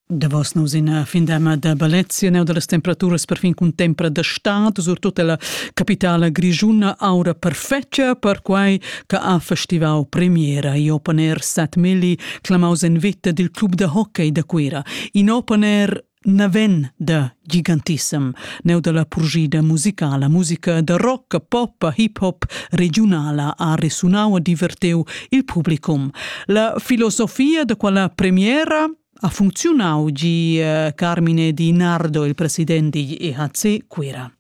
Davos nus ina findama da ballezia neu dallas temperaturas perfin cun tempra da stad, surtut ella capitala grischuna aura perfetga, perquai che ha festivau premiera i open air Sat Milli, clamaus en vita dil club da hockey da Cuira. In open air naven da gigantissem, neu dalla purgida musicala, musica da rock, pop, hip hop regionala ha resunau e diverteu il publicum. La filosofia da quella premiera ha funzionau gi eh, Carmine Di Nardo, il president di EHC Cuira.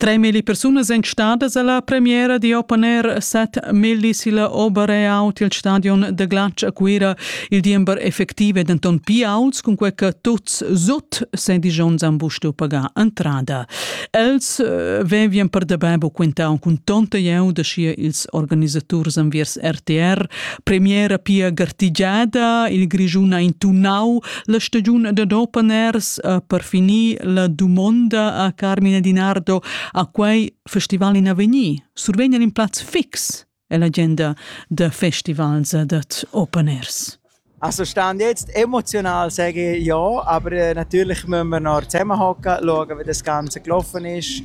Tremilli persunas èn stadas a la premiera di Open Air set milli silla Oberreaut il stadion da glatsch a Cuira. Il diember effectiv è denton pia auts cunquei che tuts sut sedisch onns han bustu pagar entrada. Els eh, vevien per dabei bu quintau cun tonta jeu da schia ils organisaturs enviers RTR. Premiera pia gartigiada, il Grischun ha intunau La stagiun dad open airs ha per finir la dumonda a Carmine Dinardo a quei festival in avegnir. Survegna in plaz fix è l'agenda da festivals dat Open Airs. Also stand jetzt emotional sage ich ja, aber äh, natürlich müssen wir noch zusammenhocken, schauen, wie das Ganze gelaufen ist,